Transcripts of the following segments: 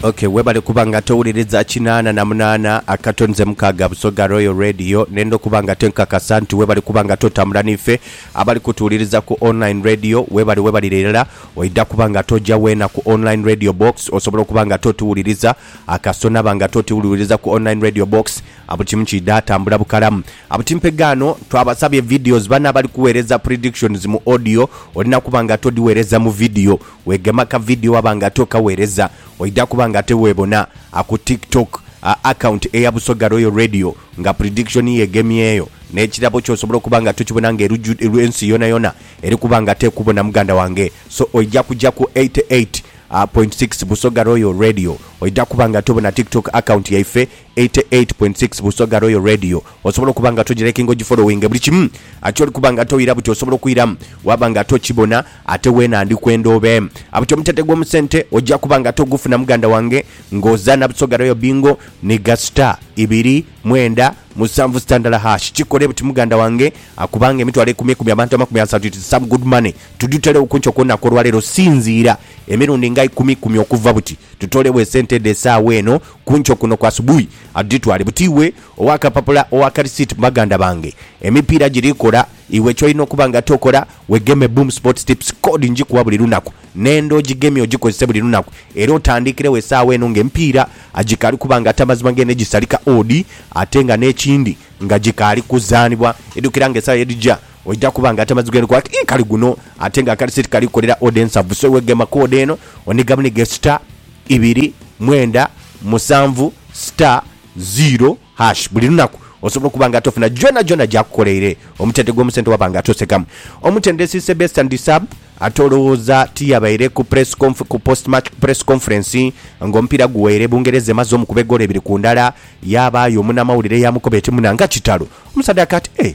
Okay, webale kuba nga towuliriza kinaana na munaana akato nze mukaaga Busoga Royal Radio nenda okuba nga tenkakasa nti webale kuba nga totambula nife abali kutuwuliriza ku online radio webale webalire irala oida kuba nga toja weena ku online radio box osobola okuba nga totuwuliriza akaso naba nga totiwuliriza ku online radio box abu kimu kiida tambula bukalamu abu timpegaano twabasabye videos bano abali kuweereza predictions mu audio olina kuba nga todiweereza mu video Wegema ka video waba nga tokawereza oidha kuba nga tewebona aku tik tok a account eya Busoga Royal Radio nga prediction yo egemyeyo nekirabo kyo osobola okuba nga tokibona nga ensi yonayona eri kuba nga tekubona muganda wange so oidha kuja ku 88.6 Busoga Royal Radio oidha kuba nga tobona tik tok account yaife Eighty eight point six Busoga Royal Radio Osobola okuba nga togyirekinga ogyifolowinge buli kimu ati oli kuba nga toira buti osobola okwiramu waba nga tokibona ate wena ndi kwenda obe abuti omutete gwomu sente ogya kuba nga togufuna muganda wange nga ozana Busoga Royal Bingo niga star ibiri mwenda musanvu star ndala hash kikole buti muganda wange akubanga emitwalo ekumi ekumi abantu amakumi asatu it is some good money tuduterewo kunkyo kwonaku olwalero sinziira emirundi nga ikumi ikumi okuva buti tutolewo esente dho esawa eno Ku nkyo kuno kwa subuhi, adhitwale buti iwe ow'akapapula, ow'akalisiiti mu baganda bange. Emipiira giri kola, iwe ky'olina okuba nga tokola, wegeme Boom Sports Tips. Kkoodi ngikuwa buli lunaku, n'enda ogigemye ogikozese buli lunaku. Era otandiikiregho esaawa eno ng'emipiira agikaali kuba nga tamazima ng'eno egisalika odi ate nga n'ekindi nga gikaali kuzaanibwa. Idhukira nga esaawa ye dhija oidha kuba nga tamazima ng'eno kuba ti kali guno ate nga akalisiiti kali kukolera odi ensavu. So iwe gema kkoodi eno onigabunige star. ibiri, mwenda, musanvu, star, ziro, hash. Buli lunaku osobola okuba nga tofuna gyonagyona gyakukoleire omutente gw'omusente waba nga tosekamu. Omutendesi Sebesta Ndisab ate olowooza tiyabaire ku press conf ku post match press conference ng'omupiira guweire Bungereza emaze omukuba egoolo ibiri ku ndala, yaabaayo omunamawulire eyamukoba eti muna nga kitalo. Omusaadha aka ati, Eeh!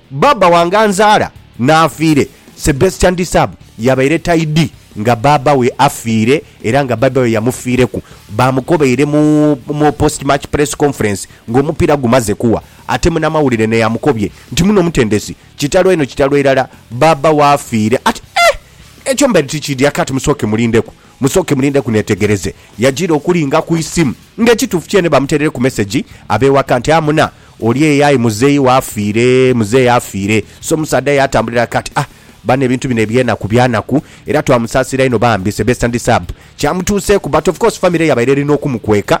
Baaba wange anzaala n'afiire. Sebastian Disab yabaire taidhi nga bbaabba we afiire era nga bbaabba we yamufiireku. Baamukobaire mu mu post match press conference ng'omupiira gumaze kuwa ate munamawulire naye amukobye nti muno omutendesi kitalo eno kitalo irala bbaabba w'afiire ate eh! Ekyo mbaire tikiidhi akaati musooke mulindeku. Musooke mulindeku neetegereze. Yajiira okulinga ku isimu nga ekituufu kyeene bamuteerere ku mesegi ab'ewaka nti amuna oli eyo aye muzeeyi we afiire, muzeeyi afiire. So omusaadha yaatambulira ghaka ati, Ah, bano ebintu bino eby'enaku by'anaku era twamusaasira inho bambi, sebesta ndi sub. Kyamutuuseeku but of course famire yabaire eri n'okumukweka.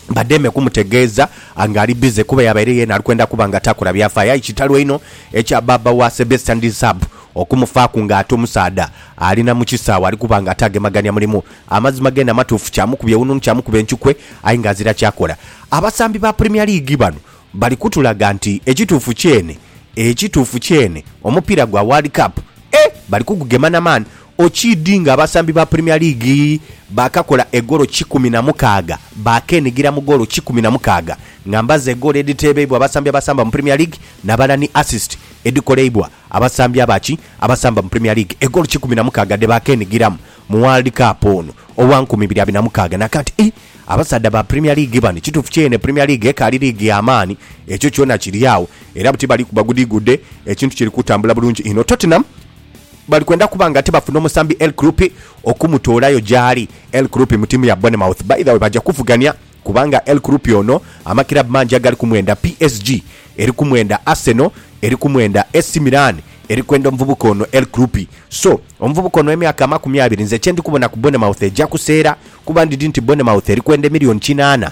bademe kumutegeeza nga ali bize kuba yabaire yeena ali kwenda kuba nga takola byafaayo aye kitalo inho ekya bbaabba wa Sebesta ndi Sab okumufaaku ng'ate omusaadha ali na mu kisaawe ali kuba nga ataagemagania mulimu. Amazima geene amatuufu kyamukuba ewununu kyamukuba encukwe aye ng'azira kyakola. Abasambi ba Premier League bano bali kutulaga nti ekituufu kyeene ekituufu kyeene omupiira gwa World Cup, eh! bali kugugema na maani Okiidhi nga abasambi ba Premier League baakakola egoolo kikumi na mukaaga, baakenigira mu goolo kikumi na mukaaga nga mbazi egoolo edhiteebeibwa abasambi abasamba mu Premier League nabala ni assist edhikoleibwa abasambi aba ki abasamba mu Premier League egoolo kikumi na mukaaga dhebaakenigiramu mu World Cup ono owa nkumi ibiri abiri na mukaaga nakati i Abasaadha ba Premier League bano kituufu kyeene Premier League ekaali liigi ya maani ekyo kyona kiri agho era buti bali kuba gudigude ekintu kiri kutambula bulungi inho Tottenham bali kwenda kuba nga tibafuna omusambi El Kroupi okumutoolayo gyali. El Kroupi mu tiimu ya Bournemouth by the way baja kuvugania kubanga El Kroupi ono amakirabu mangi agali kumwenda, PSG eri kumwenda, Arsenal eri kumwenda, AC Milan eri kwenda omuvubuka ono El Kroupi. So, omuvubuka ono ow'emyaka amakumi abiri nze kye ndi kubona ku Bournemouth eja kuseera kuba ndidhi nti Bournemouth eri kwenda emillioni kinaana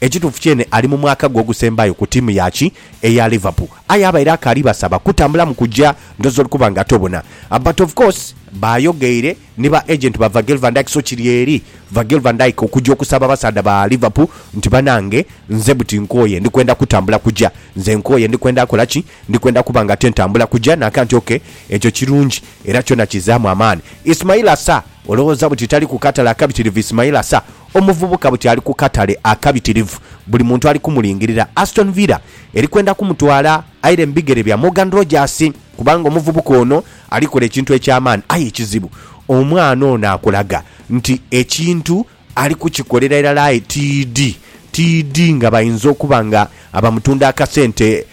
Ekituufu kyene ali mu mwaka gwe ogusembayo ku tiimu ya ki eya Liverpool aye abaire akaali basaba kutambula mu kuja ndowoza oli kuba nga tobona but of course baayogeire ni ba agent ba Virgil van Dijk so kiri eri Virgil van Dijk okuja okusaba abasaadha ba Liverpool nti banange nze buti nkooye ndi kwenda kutambula kuja nze nkooye ndi kwenda kola ki ndi kwenda kuba nga te ntambula kuja nanka nti ok ekyo kirungi era kyona kizaamu amaani Ismaila Sarr olowooza buti tali ku katale akabitirivu Ismaila Sarr Omuvubuka buti ali ku katale akabitirivu, buli muntu ali kumulingirira. Aston Villa eri kwenda kumutwala aire mu bigere bya Morgan Rogers kubanga omuvubuka ono ali kola ekintu eky'amaani. Aye ekizibu omwana ono akulaga nti ekintu ali kukikolera irala aye tiidhi tiidhi nga bainza okuba nga bamutunda akasente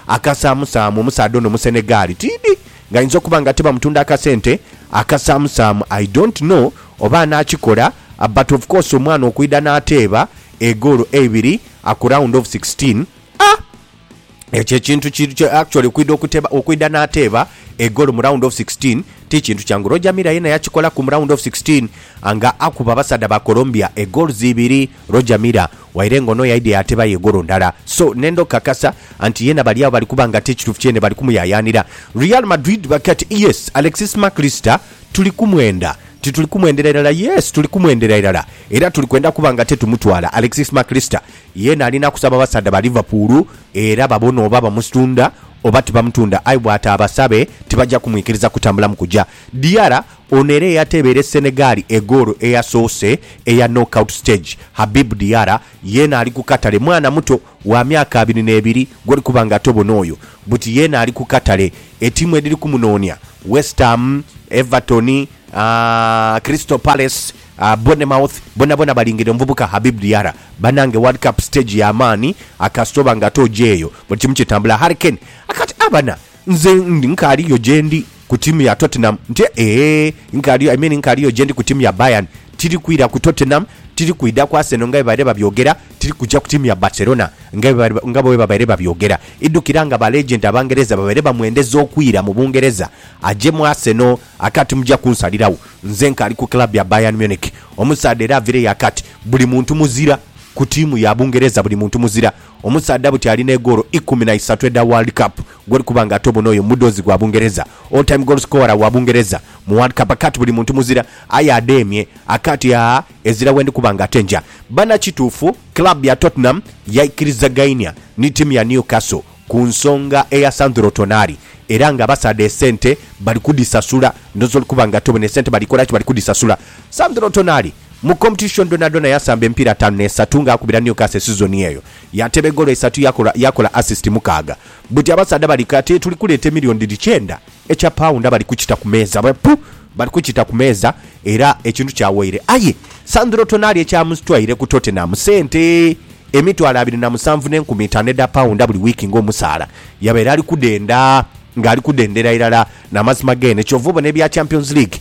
akasaamusaamu. Omusaadha ono Musenegaali, tiidhi nga ainza okuba nga ate bamutunda akasente akasaamusaamu. I don't know Oba anaakikola but of course omwana okwidha n'ateeba egoolo eibiri ku round of sixteen, ah! Ekyo ekintu ki, actually okwidha okuteeba, okwidha n'ateeba egoolo mu round of sixteen ti kintu kyangu. Roger Milla yena yakikolaku mu round of sixteen nga akuba abasaadha ba Colombia egoals ibiri. Roger Milla waire nga ono yaidha yaateebayo egoolo ndala. So nenda okukakasa nti yena bali agho bali kuba nga ti kituufu kyeene bali kumuyayaanira. Real Madrid bali kati, yes, Alexis Mac Allister Tuli kumwenda. Tituli kumwendera irala. Yes, tuli kumwendera irala. Era tuli kwenda kuba nga tetumutwala. Alexis Mac Allister yeena alina kusaba basaadha ba Liverpool era babone oba bamusitunda oba tibamutunda. Aye bw'ataabasabe, tibaja kumwikiriza kutambulamu kuja. Diarra, ono era eyateebere Senegal egoolo eyasoose eya knock-out stage, Habib Diarra, yeena ali ku katale. Mwana muto. wa myaka abiri n'ebiri gw'oli kuba nga tobona oyo, buti yeena ali ku katale. Etiimu edhiri kumunoonia, West Ham, Everton, Crystal Palace, Bournemouth, bonabona balingirira omuvubuka Habib Diarra. Banange World Cup stage ya maani kasita oba nga ate ojeeyo buli kimu kitambula. Harry Kane akati, Abana! Nze ndi nkaali yo gyendi ku tiimu ya Tottenham nti eeh nkaali yo I mean nkaali yo gyendi ku tiimu ya Bayern, tiri kwira ku Tottenham, tiri kwidha ku Arsenal nga bwebabaire babyogera, tiri kuja ku tiimu ya Barcelona nga bwebabaire babyogera. Idhukira nga ba legend Abangereza babaire bamwendeza okwira mu Bungereza aje mu Arsenal aka ati muja kunsaliragho. Nze nkaali ku club ya Bayern Munich. Omusaadha era avireyo aka ati buli muntu muzira ku tiimu ya Bungereza, buli muntu muzira. Omusaadha buti ali n'egoolo ikumi na isatu edha World Cup gwoli kuba nga ate obon'oyo mudhoozi gwa Bungereza, all time goal scorer wa Bungereza mu World Cup aka ti buli muntu muzira aye adheemye aka ti aa ezira wendi kuba nga ate nja bana Kituufu club ya Tottenham yaikirizagainia ni tiimu ya Newcastle ku nsonga eya Sandro Tonali era nga abasaadha esente bali kudhisasula ndhooza oli kuba nga ate obona esente bali kola ki bali kudhisasula Sandro Tonali. Mu competition dhonadhona yasamba emipiira ataanu n'esatu nga akubira Newcastle esizoni eyo. Yateeba egoolo isatu yakola yakola assist mukaaga. Buti abasaadha bali kati tuli kuleeta emiliyoni dhiri kyenda ekya paawunda bali kukita ku meeza. Bwe pu! Bali kukita ku meeza era ekintu kyawaire. Aye Sandro Tonali ekyamutwaire ku Tottenham sente emitwalo abiri na musanvu n'enkumi itaanu edha paawunda buli wiiki ng'omusaala. Yabaire ali kudhenda ng'ali kudhendera irala. N'amazima geene ky'ova obona ebya Champions League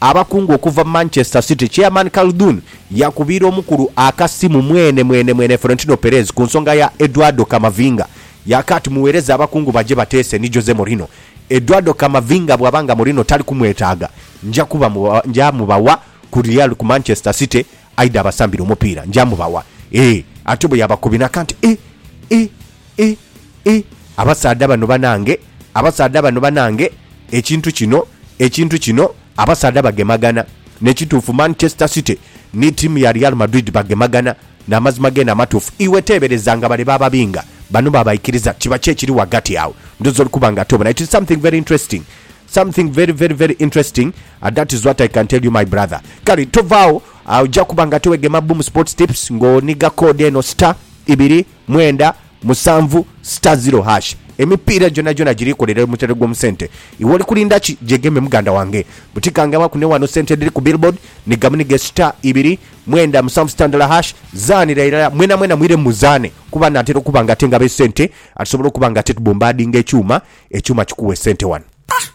Abakungu okuva Manchester City, Chairman Khaldoon yakubiira omukulu akasimu mwene mwene mwene Florentino Perez ku nsonga ya Eduardo Camavinga. Yaaka ati, Muweereze abakungu baje bateese ni Jose Mourinho. Eduardo Camavinga bw'aba nga Mourinho tali kumwetaaga, nja kuba nja mubawa ku Real ku Manchester City aidha abasambire omupiira. Nja mubawa. Eeh. Atyo bwe yabakubinaka nti, Eeh, eeh. I, i, abasaadha bano banange, abasaadha bano banange, ekintu kino, ekintu kino, abasaadha bagemagana. Nekituufu Manchester City ni tiimu ya Real Madrid bagemagana. Namazima gene amatuufu. Iwe teebereza nga bale bababinga, bano babaikiriza. Kiba ki ekiri ghagati agho? Ndhooza oli kuba nga tobona. It is something very interesting. Something very, very, very interesting. That is what I can tell you my brother. Kale tovaagho, oja kuba nga ate wegema Boom Sports Tips nga oniga code eno star, ibiri, mwenda musanvu star zero hash Emipiira gyonagyona girikolera omutendhe gw'omu sente. Iwe oli kulinda ki? Gyegeme muganda wange. Buti kangabaku ni wano sente edhiri ku billboard ni gamuni ge star ibiri mwenda musanvu star ndala hash. Zaanira irala mwenamwena mwiremu muzaane kuba naatera okuba nga ate ngaba esente atusobola okuba nga ate tubombadinga ekyuma, ekyuma kikuwa esente wano.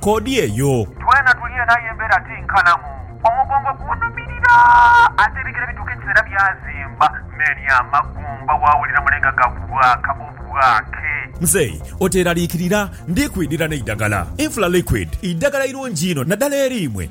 Koodi eyo. Twena tuli eno aye embeera ti nkalamu. Omugongo gunhumirira ate ebigere bituuka ekiseera byazimba me ni amagumba waawulira mule nga gabwaaka obwaake. Mzei oteeraliikirira, ndi kwidhira n'eidagala. Infla Liquid idagala irungi inho naddala eri imwe